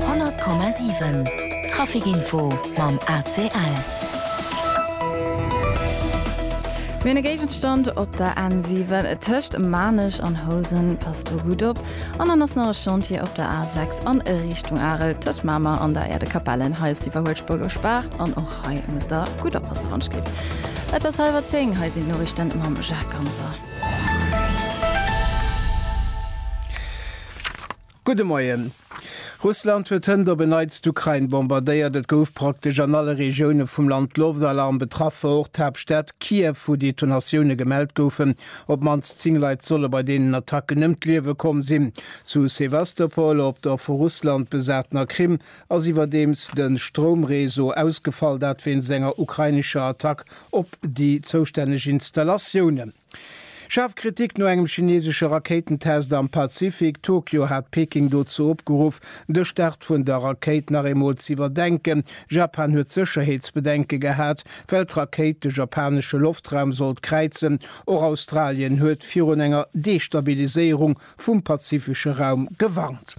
100,7 Trafic Info mam ACL. Mir hunn e Géigenstand op der N7 tëscht Maarnech an Housen. Passt do gutt op. An dann ass nach e Chantier op der A6 an Richtung Arel tëscht Mamer an der Äerdekapellen. Hei ass d'Iwwerhuelspuer gespaart an och hei musst der gutt oppassen, wann d'Schliff. Et ass hallwer 10, hei sinn d'Noriichten mam Jacques Ganser. Gudde Moien. Russland huet hënt op en Neits d'Ukrain bombardéiert. Et gouf praktesch an alle Regioune vum Land Loftalarm betraff, och d'Haaptstad Kiew, wou Detonatioune gemellt goufen. Op d'mannst 10 Leit solle bei deenen Attacken ëm d'Liewe komm sinn. Zu Sewastopol, op der vu Russland besatener Krim, ass iwwerdeems de Stroumreseau ausgefall, dat wéinst enger ukrainescher Attack op déi zoustänneg Installatiounen. Schaarf Kritik no engem chineesesche Rakéitentest am Pazifik. Tokio hat Peking dozou opgeruff, de Start vun der Rakéit nach eemol z'iwwerdenken. Japan huet Sécherheetsbedenke gehat, well d'Rakéit de japanesche Loftraum sollt kräizen. Och Australien huet virun enger Destabiliséierung vum pazifesche Raum gewarnt.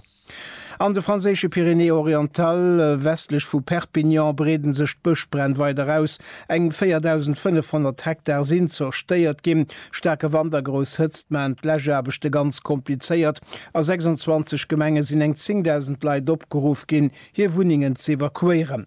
An de franséische Pyrénées-Orientales, westlech vu Perpignan, breede sech d'Bëschbränn weider aus. Eng 4.500 Hektar sinn zerstéiert ginn. Staarke Wand a grouss Hëtzt maachen d'Läschaarbechte ganz komplizéiert. A 26 Gemenge sinn eng 10.000 Leit opgeruff ginn, hir Wunnengen z'evakuéieren.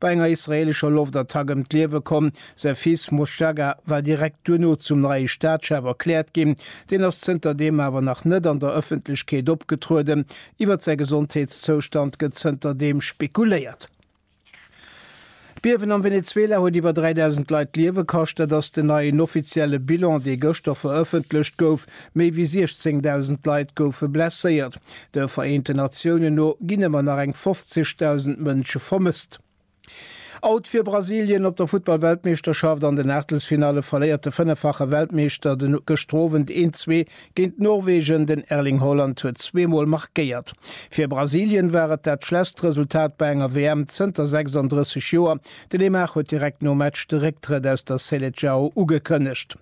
Bei enger israeelescher Loftattack ëm d'Liewe komm. Säi Fils Moschaga war direkt duerno zum neie Staatschef erkläert ginn. Deen ass zënter deem awer nach net an der Ëffentlechkeet opgetrueden. Iwwer säi Gesondheetszoustand gëtt zënter deem spekuléiert. D'Biewen am Venezuela huet iwwer 3.000 Leit d'Liewe kascht. Dat ass den neien offizielle Bilan, dee gëschter verëffentlecht gouf. Méi wéi 16.000 Leit goufe blesséiert. De Vereenten Natiounen no ginn ëmmer nach eng 50.000 Mënsche vermësst. Out fir Brasilien op der Futtball-Weltmeeschterschaft, An den Aachtelsfinalle verléiert de fënneffache Weltmeeschter de gëschter Owend 1-zwee géint Norwegen, den Erling Haaland huet zwee Mol markéiert. Fir Brasilien war et dat schlesst Resultat bei enger WM zënter 36 Joer. De Neymar huet direkt nom Match de Récktrëtt aus der Seleçao ugekënnegt.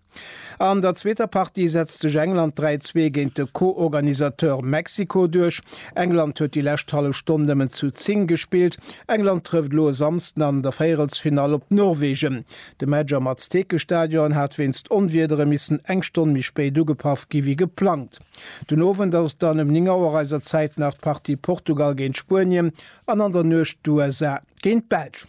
An der zweeter Partie setzt sech England 3, 2 géint de Co-Organisateur Mexiko duerch. England huet déi lescht hallef Stonn nëmmen zu 10 gespillt. England trëfft elo e Samsden an der Véierelsfinall op Norwegen. De Match am Aztekestadion hat wéinst Onwiedere missen eng Stonn méi spéit ugepaff gi wéi geplangt. Den Owend ass et dann ëm 9 Auer eiser Zäit nach d'Partie Portugal géint Spuenien an an der Nuecht d'USA géint d'Belsch.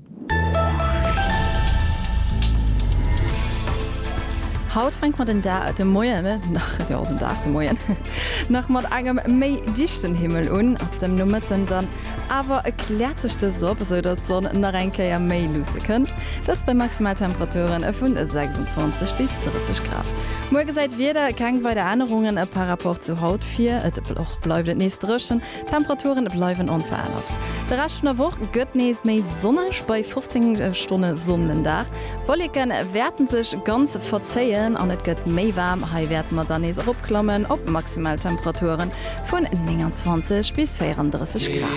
Haut fänkt mer den Da, de Moien, nach, jo, den Dag, de Moien, nach mat engem méi dichten Himmel un, ab dem Nomëtten dann awer kläert sech dëst op, esou dass d'Sonn nach eng Kéier méi luusse kënnt, dëst bei Maximaltemperaturen vu 26 bis 30 Grad. Muer gesäit d'Wieder keng weider Ännerungen par Rapport zu haut vir, et bleift och bleift et nees drëchen. D'Temperature bleiwen onverännert. De Rescht vun der Woch gëtt nees méi sonneg, bei 15 Stonne Sonn den Dag. Wolleke wäerte sech ganz verzéien an et gëtt méi waarm. Hei wäerte mer dann nees eropklammen op maximal Temperature vun 29 bis 34 Grad.